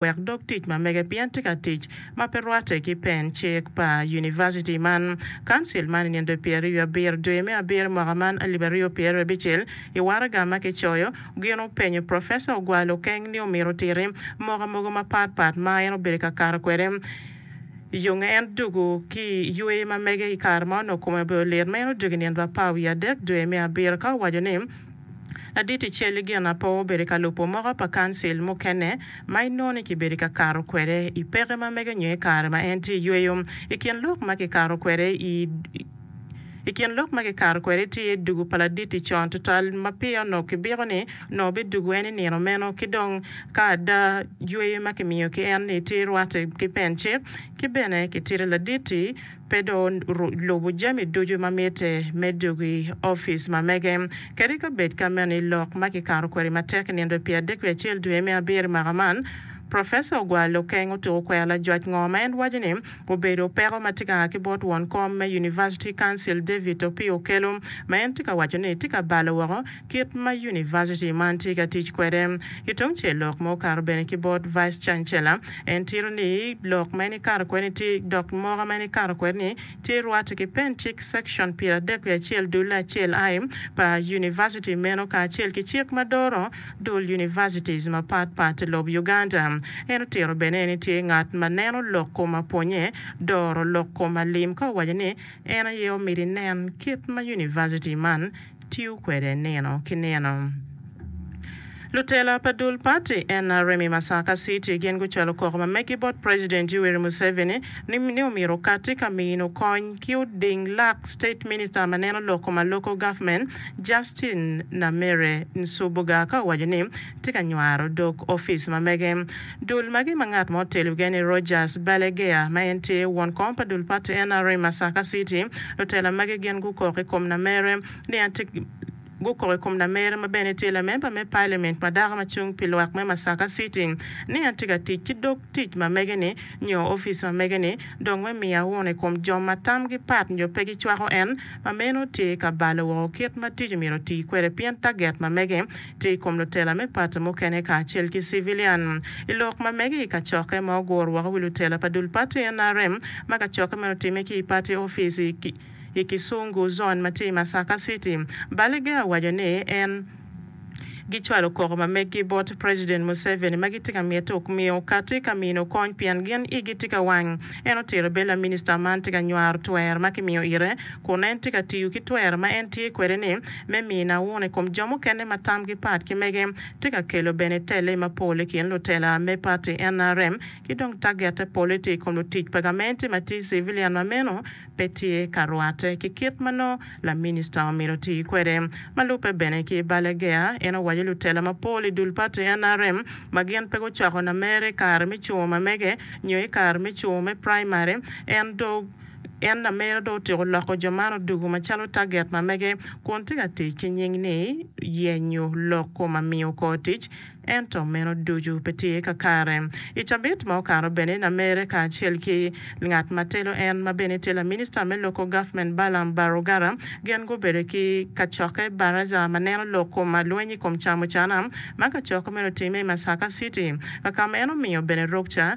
wek dog tic ma mege pien tye ka tic ma pe rwatte ki pen cik pa univaciti man. Council man i nino pyeraryo abiro dwe me abiro mwaka man alip aryo pyeraryo abicel i waraga ma kicoyo gin openyo Professor Ogwalo keng ni omito otiti moka mogo mapat pat ma en obedo ka kato kwede yonge en dugu ki yweyo ma mege i kare ma onongo kome obedo lit ma en odugo i nino bapaa wiye adek dwe me abiro ka owaco ni Ladit i cal-li gin apo obedo ka lubo moko pa kancil mukene ma inongo ni kibedo ka kato kwede i peke ma mege nyo i kare ma en tye i yweyo. I kin lok ma kikato kwede i I kin lok ma kikato kwede tye dugu pa ladit-ti con tutwal ma pire onongo kibiko ni onongo bidugu en i nino meno ki dong ka ada yweyo ma kimiyo ki en-ni tye rwatte ki pencen ki bene kitito ladit-ti pe dong lubo jami ducu ma mitte me dok i opic ma mege, kadi ka bed ka meno i lok ma kikato kwede matek nino pi adek pi acel dwe me abiro i mwaka man. Professor ogwal Okeng otuko kwero lajwac ngo ma en waco ni obedo peko ma tye ka a ki bot won kom me University Council David Opio Okello ma en tye ka waco ni tye ka balo woko kit ma univaciti man tye ka tic kwede. Ki tung cel lok ma okato bene ki bot Vice Chancellor, en tito ni lok ma en ikato kwede ni tye dok moka ma en ikato kwede ni tye rwate ki pen cik section pyeradek wiye acel dulle acel I pa univaciti meno kacel ki cik ma doro dul univacities mapat pat ilob Uganda. En otito bene ni tye ngat ma neno lok kom apwonye doro lok kom alim ka owaco ni en aye omiti nen kit ma univaciti man tiyo kwede nino ki nino. Lutela pa dul pati nrm i Masaka City gin gucwalo koko ma megi bot President Yoweri Museveni ni ni omyero okati ka mino kony ki oding lak State Minister ma neno lok kom aloko government Justine Namere Nsubuga ka owaco ni tye ka nywaro dog opic ma mege. Dul magi ma ngat mo telo ge ni Rogers Balaguer ma en tye won kom pa dul party nrm Masaka City, lutela magi gin gukok i kom Namere ni en tye gukok i kom Namere ma bene tye lamemba me Parliament ma dako ma cung pi lwak me Masaka City ni en tye ka tic ki dog tic ma mege ni nyo opic ma mege ni dong me miyo auno i kom jo ma tam gi pat nyo pe gi cwako en ma meno tye ka balo woko kit ma tic omyero oti kwede pien target ma mege tye i kom lutela me pati mukene kacel ki civilian i lok ma mege i kacokke ma oguro woko wi lutela pa dul pati nrm ma kacokke meno otimme ki i pati ofice i Kisungu zone ma tye i Masaka City. Baliga owaco ni en gicwalo koko ma meggi bot President Museveni ma gitye ka mite okmi okati ka mino kony pien gin igi tye ka wang. En otito bed laminista man tye ka nywaro twer ma kimiyo ite kun en tye ka tiyo ki twer ma en tye kwede ni me miyo nauna i kom jo mukene ma tamgi pat ki mege tye ka kelo bene telle mapol i kin lutela me pati nrm ki dong tagette pole tye i kom lutic pa gamente ma tye civilian ma meno pe tye ka rwatte ki kit ma nongo laminista omyero oti kwede. Ma lubbe bene ki Balaguer, en owaco lutela mapol i dul pati nrm ma gin pe gucwako namer i kare me cungo mamege nyo i kare me cungo me primary en do En lamera dong otyeko loko jo man odoko macalo taget ma mege kun tye ka tic ki nying ni yenyo lok ko ma miyo kor tic, ento meno ducu pe tye kakare. I cabit ma okato bene, lamere kacel ki ngat ma telo en ma bene tye laminista me loko gavment Balaam Barugara gin gubedo ki kacokke Baraza ma neno lok ko ma lweny i kom camucana ma kacokke meno otimme i Masaka City kaka ma en omiyo bene rukca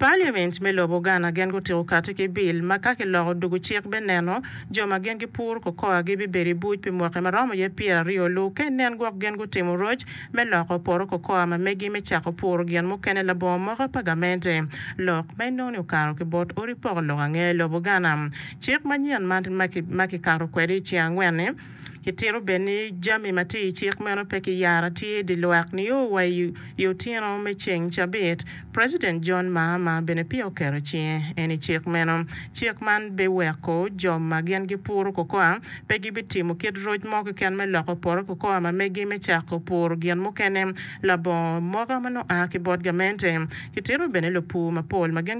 Parliament me lobo Ghana gin gutiko kati ki bill ma ka kiloko dugu cik be neno jo ma gin gipuro cocoa gi bibedo i buc pi mwaki ma romo iye pyera aryo lu ke nen gwok gin gutimo roc me loko poto cocoa ma megi me cako puro gin mukene labongo moko pa gamente lok ma inongo ni okato ki bot odi poko lok ange lobo Ghana cik manyen ma kikato kwede i ceng angwen ni Kitito bene ni jami ma tye i cik meno pe kiyara tye i dye lwak nio wa i otyeno me ceng cabit. President John Mahama bene peya oketo cinge en i cik meno. Cik man biweko jo ma gin gipuro cocoa pe gibitimo kit roc mo keken me loko poto cocoa ma megi me cako puro gin mukene labongo moka ma nongo a ki bot gamente. Kitito bene lupur mapol ma gin